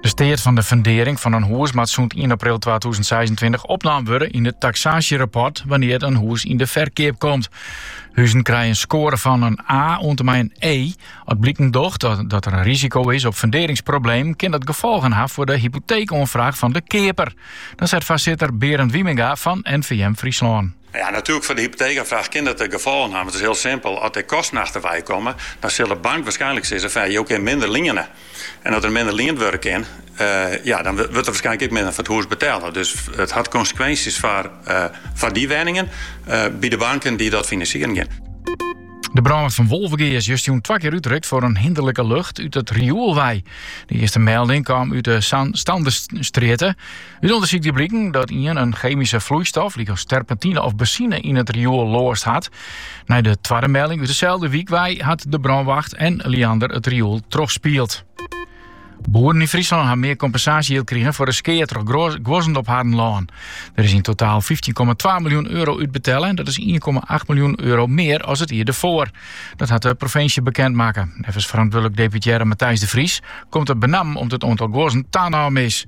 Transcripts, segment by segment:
De steat fan de fundearring fan in hûs moat sûnt ien april twatûzen seisentweintich opnaam wurde yn it taksaasjerapport wannear't in hûs yn de ferkeap komt. Huzen krije in skoare fan in A oant en mei in E. As bliken docht dat der in risiko is op fundearringsproblemen, kin dat gefolgen ha foar de hypoteekoanfraach fan de keaper. Dat seit foarsitter Berend Wijmenga fan NVM Fryslân. Ja, natuerlik foar de hypoteekoanfraach kin dat gefolgen ha, want it is hiel simpel, as der kosten achterwei komme, dan sil de bank waarskynlik sizze fan ja, jo kinne minder liene. En as der minder liend wurde kin, ja, dan wurdt der waarskynlik ek minder foar it hûs betelle. Dus it hat konsekwinsjes foar dy wenningen by de banken dy't dat finansieren gean. De brânwacht fan Wolvegea is justjûn twa kear útrukt foar in hinderlike lucht út it rioel wei. De earste melding kaam út de Sandestrjitte. Ut ûndersyk die bliken dat ien in chemische vloeistof, lykas terpentine of benzine, yn it rioel loast hat. Nei de twadde melding út dezelfde wyk wei hat de brânwacht en Liander it rioel trochspield. Boeren yn Fryslân ha mear kompensaasjejild krigen foar de skea troch guozzen op harren lân. Der is yn totaal 15,2 miljoen euro útbetelle en dat is 1,8 miljoen euro mear as it jier derfoar. Dat hat de provinsje bekend makke. Neffens ferantwurdlik deputearre Matthijs de Vries komt it benammen omdat it oantal guozzen tanommen is.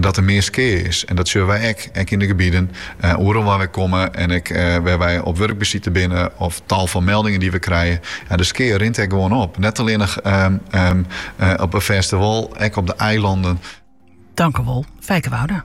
dat der mear skea is. En dat sjoche wy ek, ek yn de gebieden, oeral waar wy komme en ek wêr wy op wurkbesite binne of tal fan meldingen die we krije. Ja, de skea rint ek gewoan op, net allinnich op 'e fêste wâl, ek op de eilanden. Tankewol, Fijke Wouda.